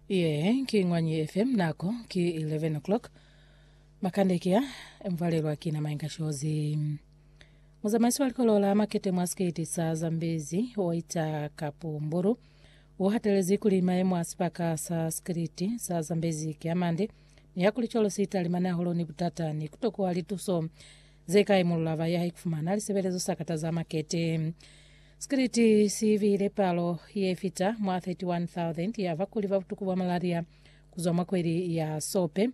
Ye ki Ngwanyi FM nako ki 11 o'clock. Makande kia mvalelwa ki na mainga shozi. Muzamaisi wa likolo la makete mwa skate sa Zambezi Waita Kapumburu u hatelezi kuli maemo a sibaka sa skate sa Zambezi ki amande ni ya kuli cwalo si talimani hahulu ni butata ni kutokuwa lituso ze ka imulula ba ya haikufumana lisebelezo sa kataza makete. Sikiliti si bile palo ye fita mwa 31,000 ya bakuli ba butuku bwa malaria ku zwa mwa kweli ya Sope,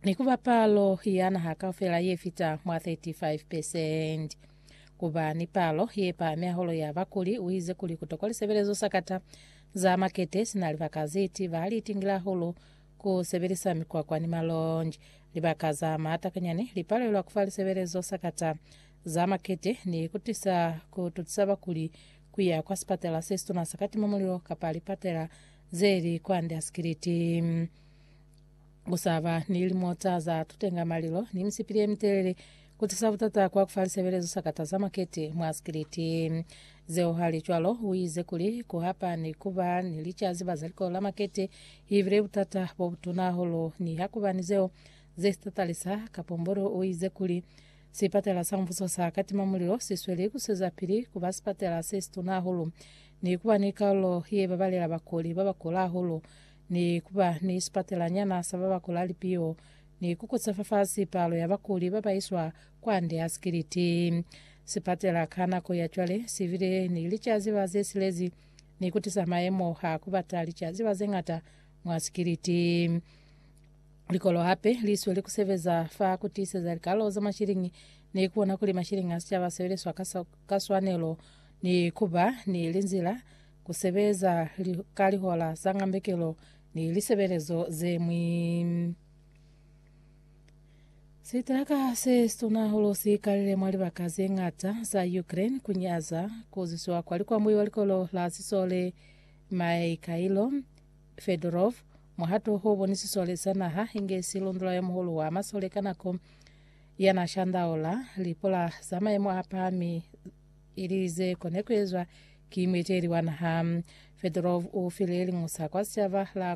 ni ku ba palo ya naha kaufela ye fita mwa 35 percent. Ku ba ni palo ye pahami hahulu ya bakuli, u ize kuli ku tokwa lisebelezo sa kata za makete sina libaka ze ti ba li tingile hahulu ku sebelisa mikwakwa ni malonji. Libaka za maata kanyani li palelwa ku fa lisebelezo sa kata za makete ni ku tisa ku tusa bakuli ku ya kwa sipatela se situna sa ka timamulilo kapa lipatela ze li kwande a sikiliti. Ku sa ba ni limota za tutenga malilo ni misipili ye mitelele ku tisa butata kwa ku fa lisebelezo sa kata za makete mwa sikiliti. Zeo halicwalo, u ize kuli ku hapa ni ku ba ni licaziba za likolo la makete i bile butata bo butuna hahulu niha ku ba ni zeo ze si tatalisa. Kapombolo u ize kuli, Sipatela sa Mubuso sa Katimamulilo si sweli ku swezapili ku ba sipatela se situna hahulu, ni ku ba ni kalulo ye babalela bakuli ba ba kula hahulu, ni ku ba ni sipatelanyana sa ba ba kula lipiho, ni ku kusa fafasi palo ya bakuli ba ba iswa kwande ha sikiliti. Sipatela ka nako ya cwale si bile ni licaziba ze silezi ni ku tisa mayemo a ku bata licaziba ze ñata mwa sikiliti. Likolo hape li sweli ku sebeza fa ku tiiseza likalo za mashilingi ni ku bona kuli mashilingi a sicaba a sebeliswa ka, ka swanelo ni ku ba ni linzila ku sebeza li, ka lihola za ngambekelo ni lisebelezo ze ñwi. Sitraka se situna hahulu si kalile mwa libaka ze ñata za Ukraine ku nyaza ku zwisiwa kwa likwambui wa likolo la sisole Mikhailo Fedorov Muhato u bonisiswa le sa naha inge silundula yo muhulu wa masole ka nako ya na shandaula lipula za maemo a pahami ili ze kone ku ezwa ki mueteli wa naha. Fedorov u file liñusa kwa sicaba la